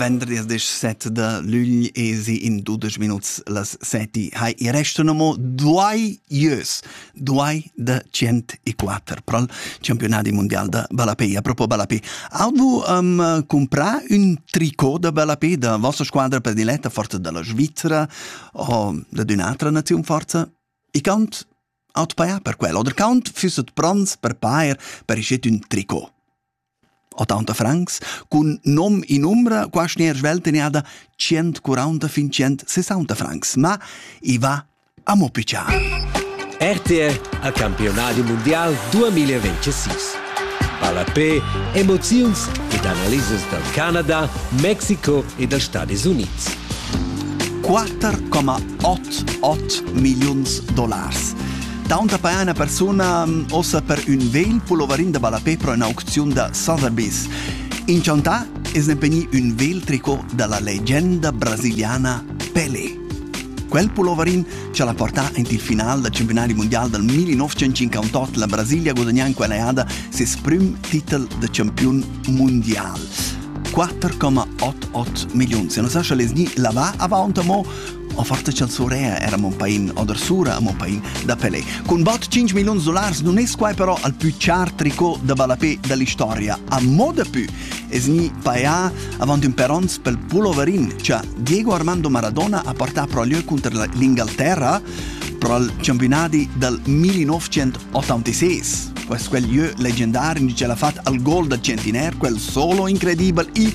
Venderdis set da lügl esi in dudesch minuts las seti. Hai, i restano mo due ieus, due da cent e quattro pro il campionat mondial da Ballapei. A propos Ballapei, avevo um, comprato un tricot da Ballapei da vostra squadra prediletta forte dalla Svizzera o da un'altra nazione forte? I cant aut paia per quello, oder cant füsset bronz per pair per schet un tricot. 80 francs cun nom in umbra quasi neir svelt tenada 140 fin 160 francs, ma i va amo piccià. RTR a campionadi mondial 2026. Palapé, emoziuns ed analisas dal Canada, Mexico e dals Stadis Unids. 4,88 milliuns dollars. Taunt apaia üna persuna ossa per ün vegl puloverin da ballapè pro üna aucziun da Sotheby's. Inchantà es impegni ün vegl tricot da la legenda brasiliana Pelé. Quel puloverin ci ha portà int il final del campionati mondial del 1958 la Brasilia guadagnà in quella eada ses prim titel de campion mondial. 4,88 milioni. Se non sa sce les ni la va avanti mo Offerta chanzurea era mon pain, odersura a mon pain da Pelé. Cun bot 5 milions dollars non es quai però al più char tricot da ballapé dall'historia. A mo da più es ni paia avant un perons pel pulloverin cha Diego Armando Maradona ha portà pro lieu contro l'Ingalterra pro il campionati dal 1986. Questo quel lieu leggendario ce l'ha fatto al gol da Centinair, quel solo incredibile e